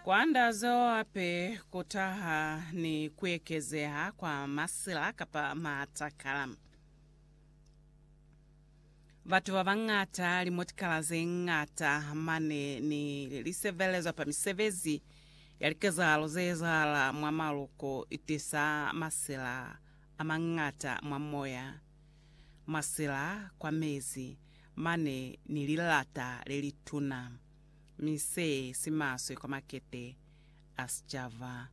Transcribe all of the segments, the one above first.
Kwanda zeo hape ku taha ni ku ekezeha kwa masila kapa matakala. Batu ba bañata, limotikala ze ñata mane ni lisebelezwa pa misebezi ya likezahalo ze ezahala mwa maluko, i tisa masila a mañata mwa moya. masila kwa mezi mane ni lilata le lituna, mi se si maswe kwa makete a sicaba.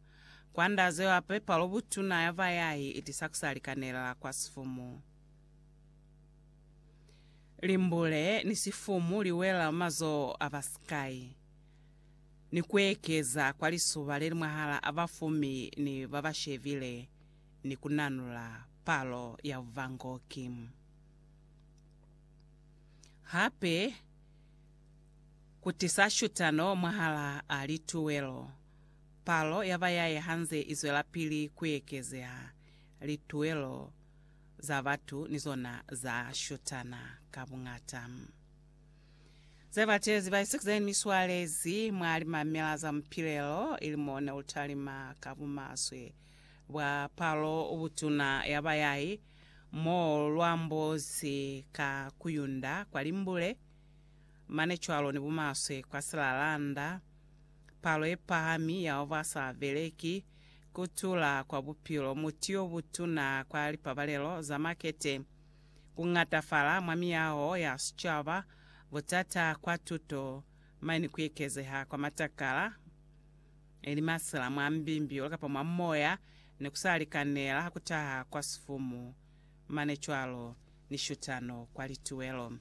Kwa nda zeo hape, palo butuna ya bayai i tisa ku sa likanelela kwa sifumu. Limbule ni sifumu li wela mwa mazoho a ba sikai, ni ku ekeza kwa lisuba le li mwahal'a bafumi ni ba ba shebile. ni ku nanula palo ya Van Gogh. Hape ku tisa shutano mwahalaa lituwelo. Palo ya bayaye ha nze i zwelapili ku ekezeha, lituwelo za batu ni zona za shutana ka buñata. Ze batezi baisiku ze ni swalezi mwa limamila za mupilelo ili mo ne u talima ka bumaswe. Bwa palo ubutuna ya bayai, mo lwambo si ka kuyunda kwa limbule, mane cwalo ni bumaswe kwa silalanda, palo ye pahami ya ba sa beleki, ku tula kwa bupilo, muti yo butuna kwa lipabalelo za makete, ku ñatafala mwa miyaho ya sicaba, butata kwa tuto, mane ni ku ekezeha kwa matakala. Neli masela mwa mbimbi kapa mwa moya, ne kusa likanela ha kutaha kwa sifumu, mane cwalo ni shutano kwa lituwelo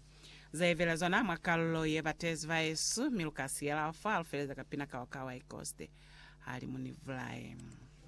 ze velezwa na mwa kalulo ye batezi baesu, mi lukasiyela fa lufeleza kapina kao ka Waikoste, hali Munivulae.